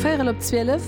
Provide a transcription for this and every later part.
Véierel op zwielef.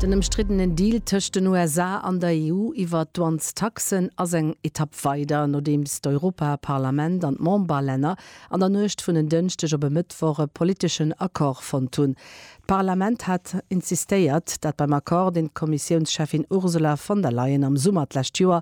Den ëmstriddenen Deal tëscht den USA an der EU iwwer d'Douanestaxen ass eng Etapp weider, nodeems d'Europaparlament an d'Memberlänner an der Nuecht vun en Dënschdeg op e Mëttwoch e politeschen Accord fonnt hunn. D'Parlament hat insistéiert, dat beim Accord, deen d'Kommissiounscheffin Ursula von der Leyen am Summer d'lescht Joer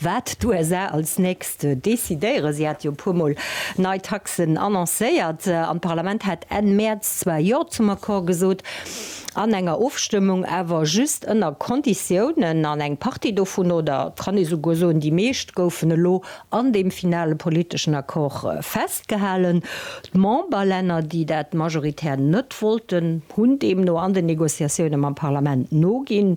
Wat d'USA als nächst decidéieren, si hate jo e puer Mol nei Taxen annoncéiert, an d'Parlament hat Enn Mäerz zwar Jo zum Accord gesot, an enger Ofstëmmung awer just ënner Konditiounen, an eng Partie dovun, oder et kann ee souguer soen, déi meescht goufen elo an deem finale politeschen Accord festgehalen. D'Memberlänner, déi dat majoritär net wollten, hunn deemno an den Negociatioune mam Parlament noginn.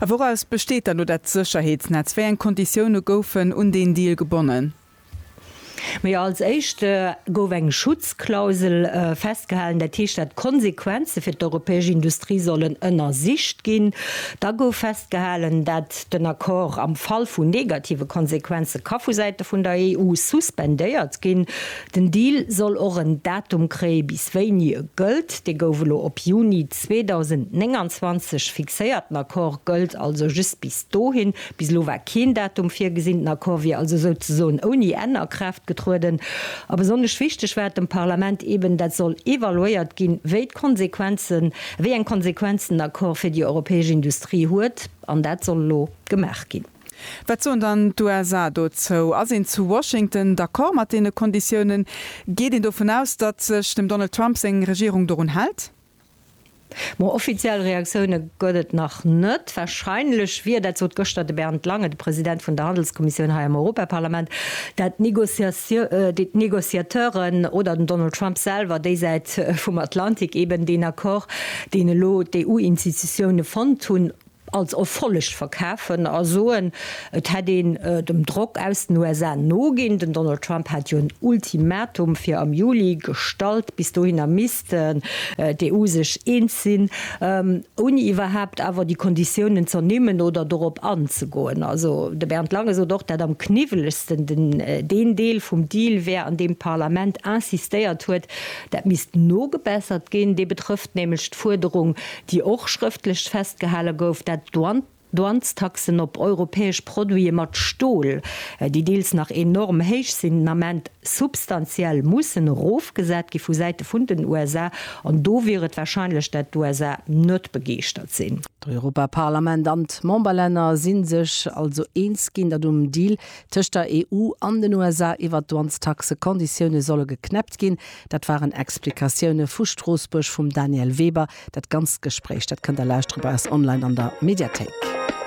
A wouraus besteet dann elo dat Sécherheetsnetz? Wéi eng Konditioune goufen un deen Deal gebonnen? Ma jo, als éischt gouf eng Schutzklausel festgehalen, dat heescht, dat d'Konsequenze fir d'europäesch Industrie sollen ënnersicht ginn. Da gouf festgehalen, dat den Accord am Fall vun negative Konsequenze ka vu Säite vun der EU suspendéiert ginn. Den Deal soll och en Datum kréie bis wéini e gëllt. Dee gouf elo op Juni 2029 fixéiert. Den Accord gëllt also just bis dohin. Bis elo war keen Datum virgesinn. Den Accord wier also souzesoen ouni Enn a Kraaft getrueden. A besonnesch wichteg war et dem Parlament eben, dat soll evaluéiert ginn, wéi d'Konsequenzen, wéi eng Konsequenzen den Accord fir déi europäesch Industrie huet. An dat soll elo gemaach ginn. Wat soen dann d'USA dozou? Ass een zu Washington d'accord mat deene Konditiounen? Geet een dovun aus, datt sech dem Donald Trump seng Regierung dorun hält? Ma offiziell Reaktioune gëtt et nach net. Warscheinlech wier, dat sot gëschter de Bernd Lange, de President vun der Handelskommissioun hei am Europaparlament, dat d'Negociateuren oder den Donald Trump selwer déi Säit vum Atlantik eben deen Accord, deen elo d'EU-Institutioune fonnt hunn, als Erfolleg verkafen a soen, et hätt een dem Drock aus den USA noginn. Den Donald Trump hat jo en Ultimatum fir am Juli gestallt. Bis dohinner misst d'EU sech eens sinn, ouni iwwerhaapt awer déi Konditiounen z'ernimmen oder dorop anzegoen. Also de Bernd Lange sot och, dat am kniwwelegsten deen Deel vum Deal wär, an deem d'Parlament insistéiert huet, dat misst nogebessert ginn. Dee betrëfft nämlech d'Fuerderung, déi och schrëftlech festgehale gouf, dat d'Douanestaxen op europäesch Produite mat Stol, déi deels nach enorm héich sinn, den Ament substantiell mussen erofgesat gi vu Säite vun den USA. An do wier et warscheinlech, dat d'USA net begeeschtert sinn. D'Europaparlament an d'Memberlänner si sech also eens ginn, dat um Deal tëscht der EU an den USA iwwert d'Douanestaxe Konditioune solle geknäppt ginn. Dat waren Explikatioune vu Stroossbuerg vum Daniel Weber. Dat ganzt Gespréich, dat kënnt der lauschtere bei eis online an der Mediathéik.